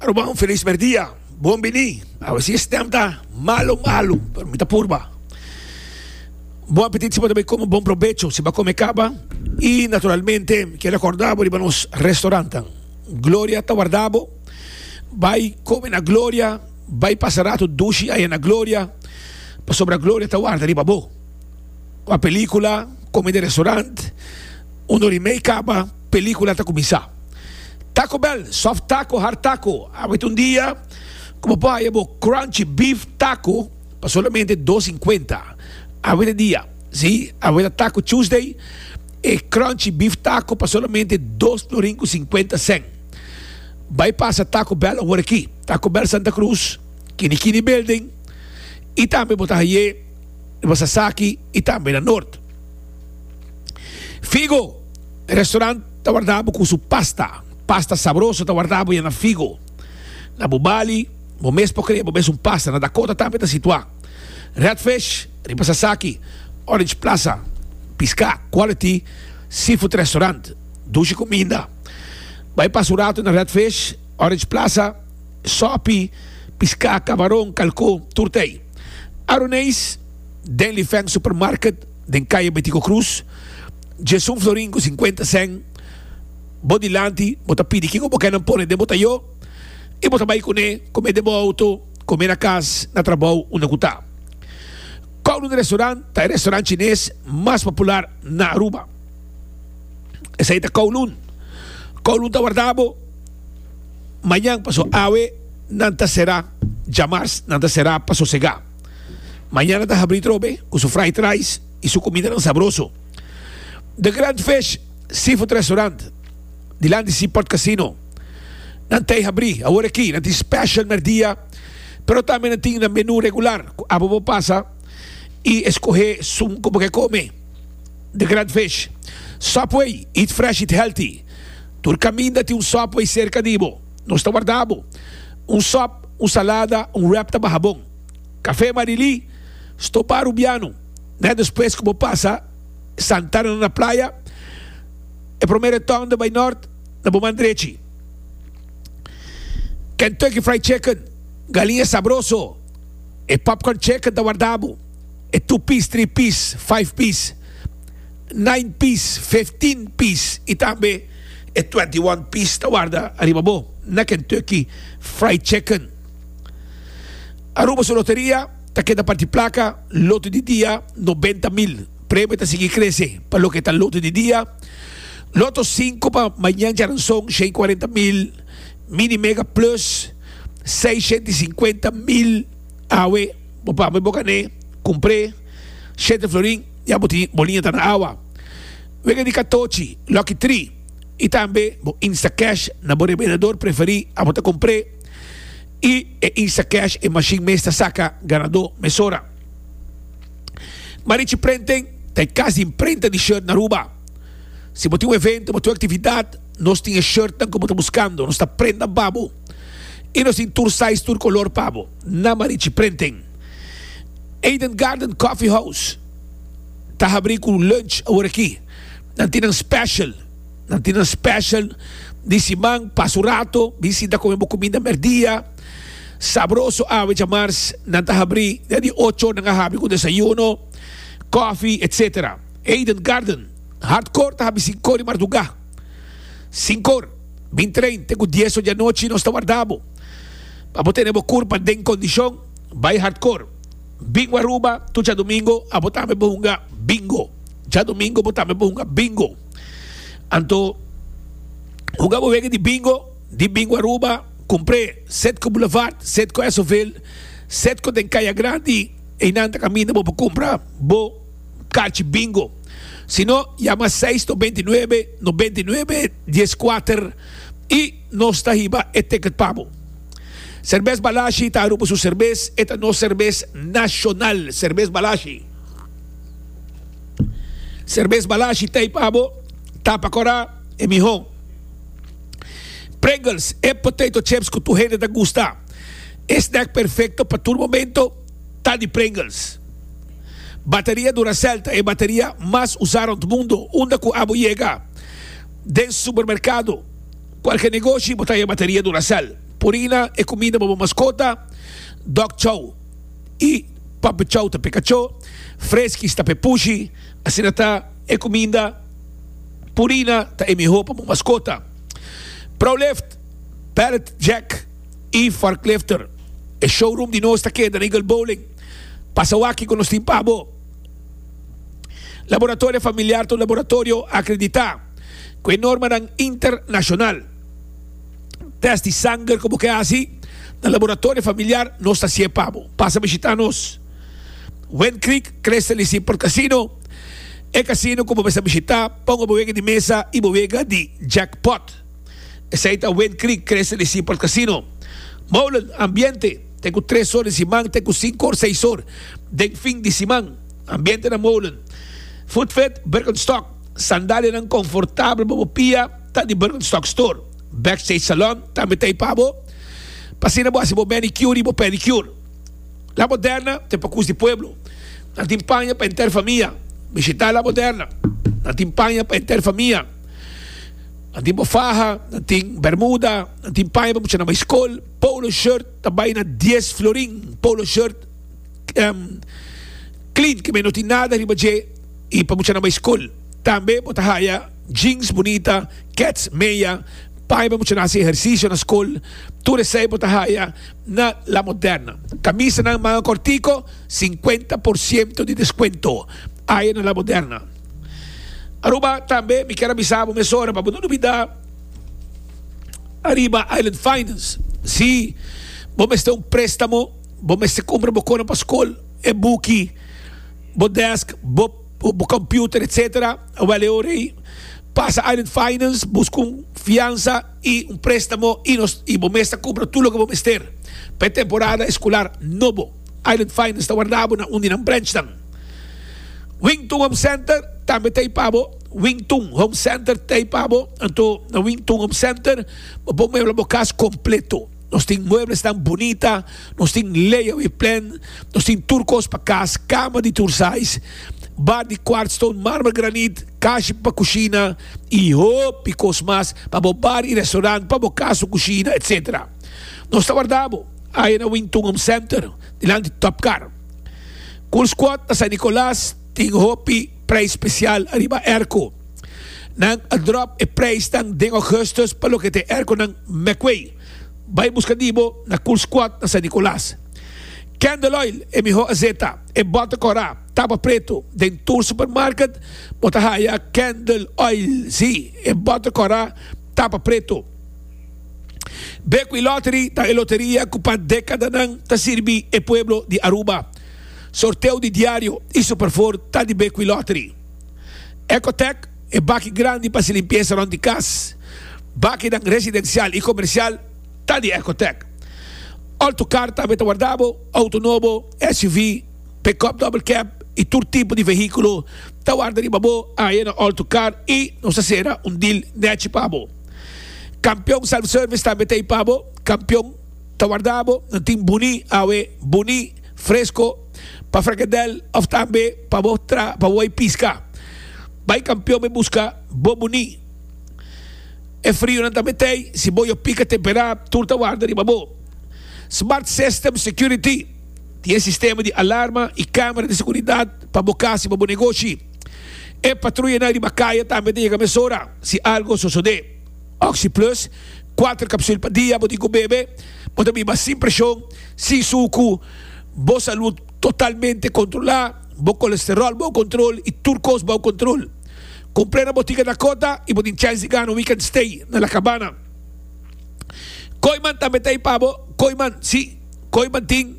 Arobao, feliz merdia. Bon bini. A ver si e stem ta malo, malo. Pero mi ta purba. Bon apetit si bo ta bai come, bon provecho si ba come caba. Y naturalmente, mi quiero recordabo riba nos restauranten. Gloria ta wardabo. Bai come na Gloria. Bai pasa rato dushi aya na Gloria. Pasobra Gloria ta warda riba bo. a pelikula kome den restaurant unda ri mei kaba pelikula ta kuminsá taco bell soft taco hard taco awet un dia ku bo por haya bo crunchy beef taco pa solamente dos sinkuenta awet e dia si awet a taco tuesday e crunchy beef taco pa solamente dos florin ku sinkuenta sèn bai pasa taco bell awor aki taco bell santa cruz kini kini building i tambe bo ta haye. e basa saki y tambe na Noord. Figo, e restaurant ta warda bo cu su pasta, pasta sabroso ta warda bo ya na Figo. Na bo Bali, bo mes por crea bo mes un pasta, na Dakota tambe ta situa. Redfish, riba Sasaki, Orange Plaza, Pisca Quality Seafood Restaurant, dushi cuminda. Bay pasa un rato na Redfish, Orange Plaza. sopi, piská, kamaron, kalkó, tur ta ei. Aroneis, Denly Feng Supermarket den kaya Betico Cruz, djes un florin ku sinkuenta sèn bo dilanti, bo ta pidi kiko bo ke nan pone den bo tayó i bo ta bai kuné komé den bo outo, komé na kas, na trabou unda ku ta. Kowloon Restaurant ta e restaurant chines mas popular na Aruba. Esei ta Kowloon. Kowloon ta warda bo. mañan paso awe nan ta será jamars nan ta será pa sosegá mañana ta habrí trobe ku su fried rice i su kumindanan sabroso The Grand Fish Seafood Restaurant di lan di Seaport Casino nan t'ei habrí awor aki nan tin special mèrdia pero tambe nan tin nan menú regular ku apa bo pasa i eskohé sun ku bo ke kome The Grand Fish Subway Eat Fresh Eat Healthy Tur kaminda tin un Subway serka di bo. Nos ta warda bo. Un sòp, un salada, un wrap ta baha bon. Kafé Marilí, stopá Rubiano. Nèt despues ku bo pasa Santana nan na playa, e promer retòn den bai nòrt na bo man drechi. Kentucky Fried Chicken, galiña sabroso, e popcorn chicken ta warda bo. E two piece, three piece, five piece. Nine pis, fifteen pis y tambe e twenty one pis ta warda ariba bo na Kentucky Fried Chicken. Aruba su loteria ta keda parti placa Loto di Dia noventa mil. Premio ta sigui crece pa loke ta Loto di Dia, Loto cinco pa Mañan Charanson shen cuarenta mil, Mini Mega Plus seisciento y cincuenta mil. Awe bo pambe bo cane, cumpre, shete florin. Ya bo tin bo liñata na awa, wega di katochi, Lucky Tree, i tambe bo Instacash na bo rebenador preferí abo ta compr'é. I e Instacash, e mashin mes ta saca ganadó mesora. Marichi Printing ta e cas di imprenta di shirt na Aruba. Si bo tin un evento, bo tin un actividad, nos tin e shirtnan cu bo ta buscando. Nos ta prenda babo i nos tin tur size, tur color pa bo. na Marichi Prenten. Eden Garden Coffee House ta habrí ku lunch aworakí. Nan tin nan special, nan tin nan special di siman. Pasa un rato bin sinta kome bo kuminda mèrdia sabroso. Awe djamars nan ta habrí, den di ocho nan a habri ku desayuno, kòfi etsetera. Eden Garden Hardcore ta habri sinkor di mardugá, sinkor bin tren te ku dies or di anochi. Nos ta warda bo. Abo tene bo kurpa den kondishon bai hardkor. Bingo Aruba, tu djadumingo abo tambe bo hunga bingo. Djadumingo bo tambe bo hunga bingo. Anto hunga bo wega di bingo di Bingo Aruba, kumpré Setco Boulevard, Setco Esoville, Setco den Kaya Grandi, einan ta kaminda bo pa kumpra bo karchi bingo. Sino, yama seis no beintinuebe no beintinuebe dieskuater i. Nos ta hiba e ticket pa bo. Serbes Balashi ta Aruba su serbes, e ta nos serbes nacional, serbes Balashi. Serbes Balashi t'ey pa bo, tapa cora e miho. Pringles, e potato chips cu tur hende ta gusta. E snack perfecto pa tur momento ta di Pringles. Bateria Duracell ta e bateria mas usa rond mundo unda cu abo yega den supermercado. Cualke negoshi bo ta haya bateria Duracell, purina, e cuminda pa bo mascota, Dog Chow y Puppy Chow ta p'e cacho, Friskies ta p'e pushi, asina ta e cuminda, purina, ta e miho pa bo mascota. Prolift, Pallet Jack y Forklifter, E showroom di nos ta keda na Eagle Bowling. Pasa wak cu nos tin pa bo. Laboratorio familiar ta un laboratorio akreditá ku e normanan internashonal. Tèst di sanger ku bo ke hasi na laboratorio familiar nos ta sie pa bo. Pasa bishitá nos Wind Creek Crestel di Seaport Casino, e kasino ku bo mester bishitá ponga bo wega di mesa i bo wega di jackpot. Esei ta Wind Creek Crestel di Seaport Casino. Molen, ambiente. te ku tres or di siman te ku sinku or seis or den fin di siman. Ambiente na molen. Voetvet Birkenstock, sandalianan konfortabel pa bo pia ta di Birkenstock Store. Backstage Salon tambe ta ei pa bo. Pa asina bo hasi bo manicure i bo pedicure. La Moderna ta pa kus di pueblo. Nan tin paña pa enter famia. Bishita La Moderna. Nan tin paña pa enter famia. Nan tin bo faha, nan tin bermuda, nan tin paña pa muchanan bai skol. Polo shirt ta bai na dies florin. Polo shirt clean ke men no tin nada riba dje y pa muchanan bai school. Tambe bo ta haya jeans bunita, kets, meya, paña pa muchanan haci ehercicio na school. Tur esey bo ta haya na La Moderna. Camisanan manga cortico cincuenta por ciento di descuento aye na La Moderna. Aruba tambe mi kier a bisa bo mesora pa bo no dubida. Ariba Island Finance, si bo mester un préstamo, bo mester kumpra bo kosnan pa skol, e buki, bo dèsk, bo kòmpiuter etcétera, wèl e ora ei pasa Island Finance, buska un fiansa i un préstamo i nos i bo mes ta kumpra tur loke bo mester pa e temporada eskular nobo. Island Finance ta wardabo na un di nan brènchnan. Wington Home Center tambe ta ei pa bo. Wing Tun Home Center ta ei pa bo. Anto na Wing Tun Home Center bo por muebla bo cas completo. Nos tin mueblesnan bunita, nos tin layaway plan, nos tin tur cos pa cas, cama di tur size, bar di quartz stone, marmer, granite, cashi pa cushina y hopi cos mas pa bo bar y restaurant, pa bo cas su cushina, etc. Nos ta warda bo aya na Wing Tun Home Center dilanti Top Car. Cool Squad na San Nicolas tin hopi. Prijs spesial ariba airco. Nan a drop e prijsnan den augustus pa loke ta e airconan Meckway, Bay Buscadibo, na Cool Squad na San Nicolas. Candle Oil, e miho azeta, e bota cora, tapa preto, den tur supermarket bo ta haya Candle Oil, si, e bota cora, tapa preto. Bekwylottery ta e loteria cu pa decadanan ta sirbi e pueblo di Aruba. Sorteo di diario y superfor ta di Bequi Lottery. Ecotec, e baki grandi pa haci limpieza rond di cas, bakinan residencial y comercial ta di Ecotec. Alto car tambe ta warda bo, auto nobo, SUV, pick-up double cab y tur tipo di vehiculo ta warda riba bo aye na Alto Car y nos ta cera un deal nechi pa bo. Campeon Self Service tambe ta ey pa bo, Campeon. Ta warda bo na tin buní, awe, buní, fresco, pa fregedel of tambe pa bo tra pa bo bai pisca. Bai campeon bai busca bo buní. E frionan ta metei si bo yo pica tempera tur ta warda riba bo. Smart System Security, tin e sistema di alarma y camera di seguridad pa bo cas y pa bo negoshi. E patruyanan riba caya tambe ta yega mesora si algo sosode. Oxi Plus, kuater kapsul pa dia, bo tin ku bebe, bo ta biba sin preshon, sin suku, bo salud totalmente kontrolá, bo kolesteròl bou kontrol i tur kos bou kontrol. Kumplé na bo tika Dakota i bo tin chèns di gana un weekend stay na La Cabana. Kooiman tambe ta ei pa bo, Kooiman, sí, Kooiman tin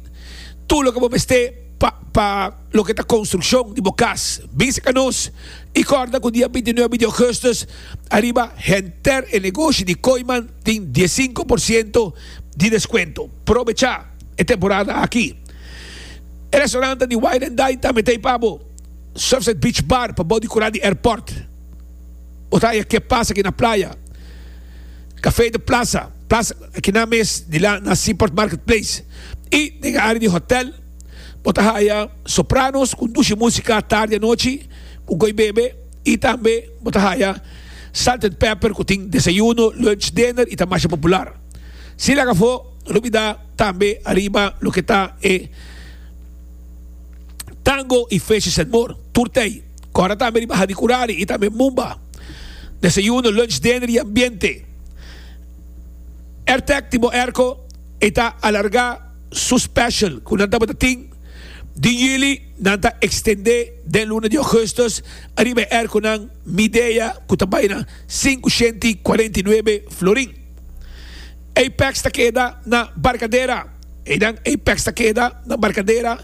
tur loke bo mester pa. Loke ta konstrukshon di bo kas? Bisita nos i kòrda ku dia binti nuebe di ògùstùs ariba henter e negoshi di Koiman tin dies sinku por siento di deskuento. Probechá e temporada aki! E restaurantan di Wine and Dine ta meté pa bo, Surfside Beach Bar pabou di kura di airport, bo ta haya Ke Pasa Aki na Playa, Café de Plaza, Plaza Aki nan mes di la na Seaport Marketplace i den e área di hòtèl. Bo ta haya sopranos cu dushi musica tardi anochi cu goy bebe y tambe bo ta haya Salt and Pepper cu tin desayuno, lunch, dinner y ta masha popular. Si laga afo no olbida tambe ariba loke ta e Tango y Fishes and More tur tey. Cora tambe riba Hani Curari y tambe Mumba. Desayuno, lunch, dinner y ambiente. Airtec tin bo airco y ta alarga. Su special cu nan tabata tin di yili nan ta extende den luna di augustus ariba e erconan Midea cu ta bay na sinku shenti i cuarenta i nuebe florin. Apex ta keda na Barcadera, einan Apex ta keda na Barcadera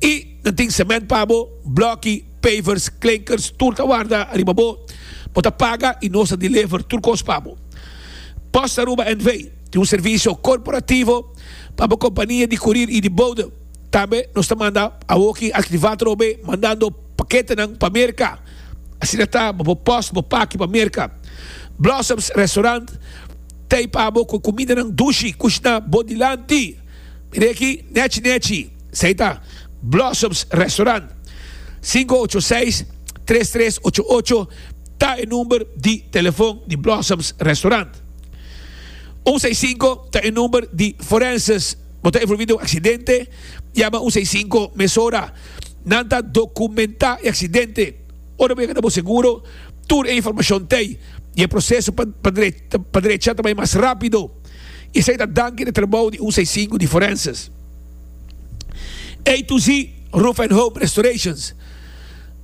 i nan tin cement pa bo, bloki, pavers, klinkers tur ta warda ariba bo, bo ta paga i nos ta deliver tur cos pa bo. Postaruba NV. Tin un servisio korporativo pa bo kompania di kurir i di boude. Tambe nos ta manda awoki aktivá trobe mandando paketenan pa Merka. Asina ta bo bo pòs, bo paki pa Merka. Blossoms Restaurant ta ei pa bo ku kumindanan dushi kushná bo dilanti. Mira aki, Nechi Nechi, esei ta Blossoms Restaurant. Sinku ocho seis, tres tres ocho ocho ta e number di telefon di Blossoms Restaurant. Un seis sinku ta e number di forenses. Bo ta envolvi den un aksidente? Yama un seis sinku mesora. Nan ta dokumentá e aksidente. Ora bo yega na bo seguro, tur e informashon t'ei i e proseso pa drecha ta bai mas rápido. I esei ta danki di e trabou di un seis sinku di forenses. A to Z Roof and Home Restorations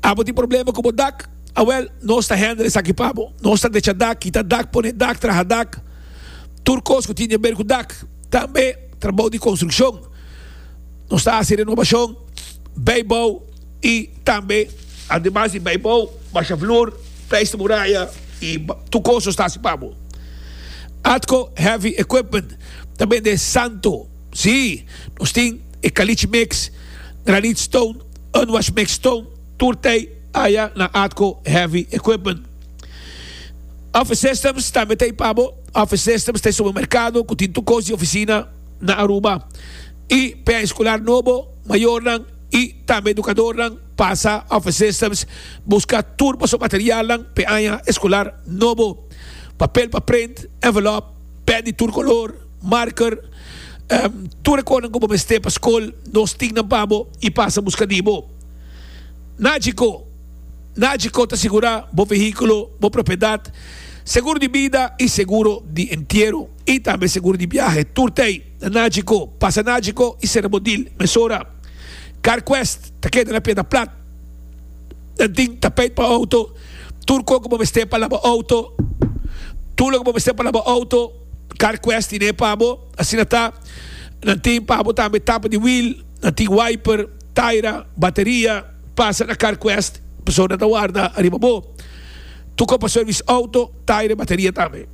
Abo tin problema ku bo dak? Awel, nos ta hender esaki pa bo. Nos ta decha dak, kita dak, pone dak, traha dak, tur kos ku tin di aber ku dak. Tambe trabou di konstrukshon. Nos ta hasi renobashon, beibou i tambe. Ademas di beibou, basha flur, pleister muraya i tur kos nos ta hasi pa bo. Atco Heavy Equipment ta bende santo. Sí, nos tin e kalitsh mix, granit stone, unwash mix stone. Tur tei aya na atco heavy equipment. Office Systems tambe tei pa bo. Office Systems tei supermercado cu tin tur cos di oficina na Aruba. Y pea escolar nobo, mayornan y tambe educadornan pasa Office Systems busca tur paso materialnan p'e aña escolar nobo. Papel pa print, envelope, pen di tur color, marker, tur e conan cu bo mester pa scol nos tinnan pa bo y pasa busca di bo. Na djiko, Na djiko ta sigurá bo vehíkulo, bo propiedat, seguro di bida i seguro di entiero, i tambe seguro di biahe tur t'ei na Na djiko. Pasa Na djiko i sera bo dil mesora. CarQuest ta keda na Piedra Plat. Nan tin tapeit pa outo, tur kon ku bo mester pa laba outo, tur loke bo mester pa laba outo, CarQuest tin e pa bo. Asina ta, nan tin pa bo tambe tapa di wiel, nan tin wiper. Taira bateria pasa na CarQuest persona ta warda ariba bo tuko pa service auto taira e bateria tambe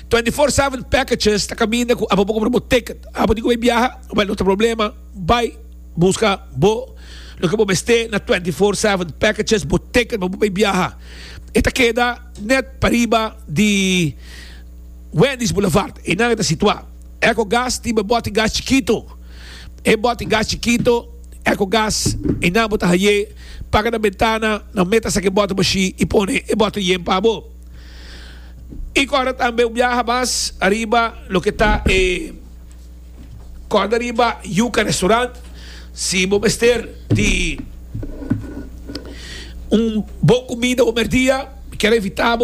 twenty four seven packages ta kaminda ku abo bo compra bo ticket abo tin ku bay biaha well no ta problema bay buska bo loke bo mester na twenty four seven packages bo ticket pa bo bay biaha e ta keda net pa riba di Wendy's Boulevard e nan e ta situa Ecogas tin bo e boti gas chikito. E boti gas chikito, ecogas, y nan bo ta haye, paga nan bentana, nan meta sa ke boti bo shi y pone e boti yen pa bo. Y kòrda tambe un biaha mas ariba loke ta e kòrda riba Yuka Restaurant, si bo mester di un bon kumida omer dia, mi ker evita bo.